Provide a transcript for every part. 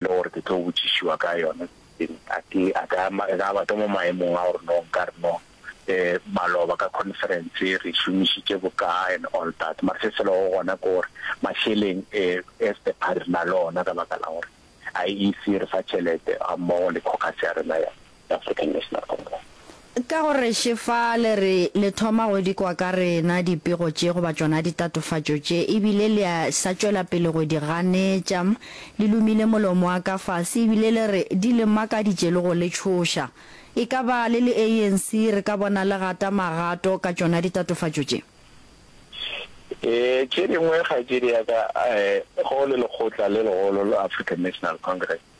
le gore ke tlo botšišiwa ka yona seseng a ke a ka ka ba ke mo maemong a gore no nka re no maloba ka conference re šomišitše boka and all that mara se se lego gona ke gore mašeleng as the party re na le ona ka baka la gore IEC re fa tšhelete ga mmogo le caucus ya rena ya ya African National Congress. Ka go re še fa le re le thoma go di kwa ka rena dipego tše goba tšona ditatofatšo tše ebile le a sa tšwela pele go di ganetša, le lumile molomo wa ka fase ebile le re di le makaditše le go le tšhoša. E ka ba le le ANC re ka bona le gata magato ka tšona ditatofatšo tše? Tše dingwe kgaetšedi ya ka, go le lekgotla le legolo la African National Congress,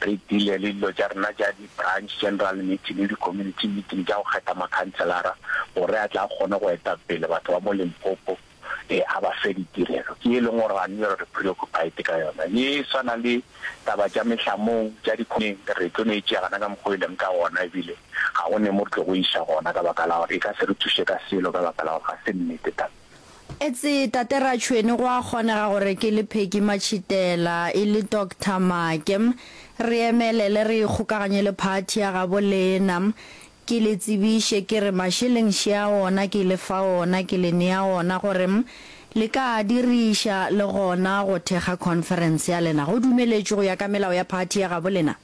Re dile le dilo tša rena tša di-branch general meeting le di-community meeting tša go kgetha makhanselara gore a tle a kgone go eta pele batho ba mo Limpopo a ba fe ditirelo. Ke ye e leng gore ga nyo re preoccupied ka yona. Ye e swana le taba tša mehlamong tša di-community re tlo no e tšea gana ka mokgwa o e leng ka gona ebile ga go ne mo re tlo go iša gona ka baka la gore e ka se re thuše ka selo ka baka la gore ga se nnete taba. Etse Tate Ratšhweni go a kgonega gore ke le Peggy Matšhitela e le Doctor Make. Re emelele re ikgokaganye le phathi ya gabo lena. Ke le tsebiše ke re mašeleng še a ona ke le fa ona ke le nea ona gore le ka a diriša le gona go thekga conference ya lena. Go dumeletšwe go ya ka melao ya phathi ya gabo lena?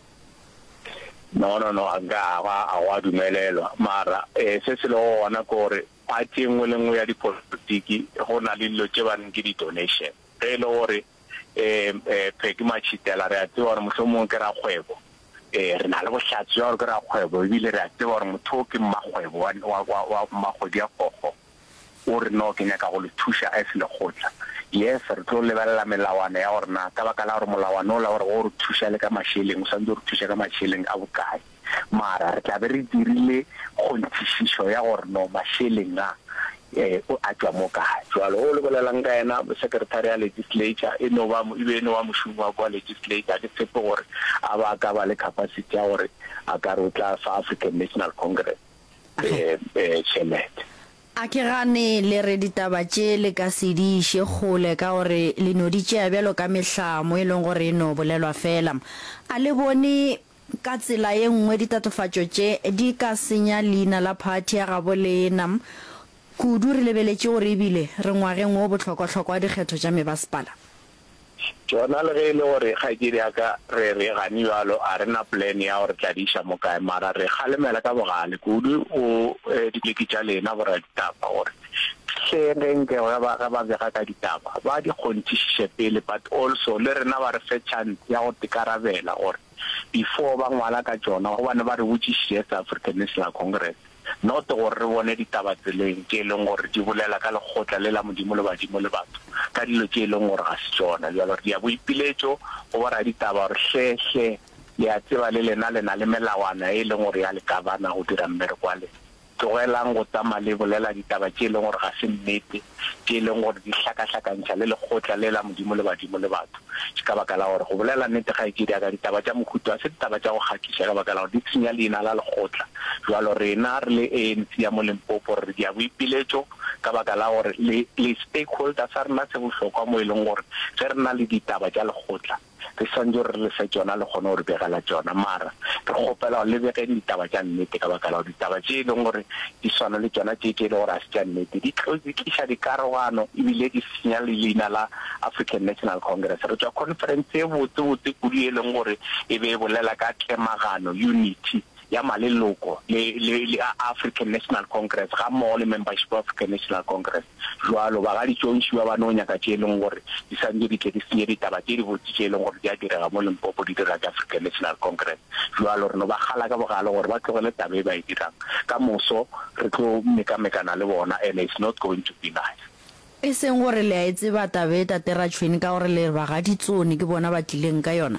No no no a nka a go a dumelelwa mara se se lego gona ke gore Ga tše nngwe le nngwe ya dipolotiki go na le dilo tše ba reng ke di-donation. Ge e le gore um phe ke matšhitela re a tseba gore mohlomongwe ke rakgwebo, um re na le bohlatse bja gore ke rakgwebo e bile re a tseba gore motho o ke mmakgwebo wa wa wa wa Mmakgodiakgokgo o re no ke nyaka go le thuša as lekgotla. Yes re tlo lebelela melawana ya gore na ka baka la gore molawana o la gore go re thuša le ka mašeleng o santse o re thuša ka mašeleng a bokae. mara re tla be re dirile kgonthišišo ya gore no mašeleng a o a tšwa mo kae. Jwale o le bolela'ng ka yena? Secretary ya Legislature, e no ba, e be e no ba mošomi wa kwa Legislature. Ga ke tshepe gore a ba a ka ba le capacity ya gore a ka re o tla fa African National Congress tšhelete. A ke gane le re ditaba tše le ka se di iše kgole ka gore le no di tšea bjalo ka mehlamo e leng gore e no bolelwa fela. A le bone Ka tsela ye nngwe ditatofatšo tše di ka senya leina la phathi ya gabo lena. Kudu re lebeletše gore e bile re ngwageng wo bohlokwahlokwa wa dikgetho tša mebasepala. Tšona le ge e le gore kgaetšedi ya ka re re gane bjalo a re na plan ya go re tladiša mo kae mara re kgalemela ka bogale kudu go dileki tša lena boraditaba gore Hle ge nke ge ba ge ba bega ka ditaba ba di kgonthišiše pele but also le rena ba re fe chance ya go tikarabela gore before ba ngwala ka tšona gobane ba re botšišiše as African National Congress not gore re bone ditaba tseleng tše e leng gore di bolela ka lekgotla le la Modimo le badimo le batho ka dilo tše e leng gore ga se tšona. Bjalo re dia boipiletšo go bo raditaba gore hle hle le a tseba le lena le na le melawana e e leng gore ya le governor go dira mmereko wa lena. Tlogelang go tsamaya le bolela ditaba tše e leng gore ga se nnete, tše e leng gore di hlakahlakantšha le lekgotla le la Modimo le badimo le batho. Ke ka baka la gore go bolela nnete, kgaetšedi ya ka, ditaba tša mohuta wo ga se ditaba tša go kgahliša ka baka la gore di tshenya leina la lekgotla. Bjalo rena re le ANC ya mo Limpopo re dia boipiletšo ka baka la gore le le stakeholder sa rena se bohlokwa mo e leng gore ge re na le ditaba tša lekgotla, re swantšo re le fe tšona le kgone go re begela tšona, mara re kgopela gore le begeng ditaba tša nnete ka baka la gore ditaba tše e leng gore di swana le tšona tše tše e le gore ga se tša nnete di tlo di tliša dikarogano e bile di senya le leina la African National Congress. Re tšwa conference e botse botse kudu e leng gore e be e bolela ka tlemagano, unity, ya maleloko le, le, le a African National Congress gammogo le membership of African National Congress. Bjalo, ba ga ditšontši ba ba no nyaka tše e leng gore di swantše di tle di senye ditaba tše dibotse tše e leng gore di a direga mo Limpopo di dirwa ke African National Congress. Bjalo, re no ba kgala ka bogale gore ba tlogele taba e ba e dirang. Ka moso re tlo mekamekana le bona and it's not going to be nice. E seng gore le a e tseba taba e, Tate Ratšhweni, ka gore le re ba ga ditsone ke bona ba tlileng ka yona.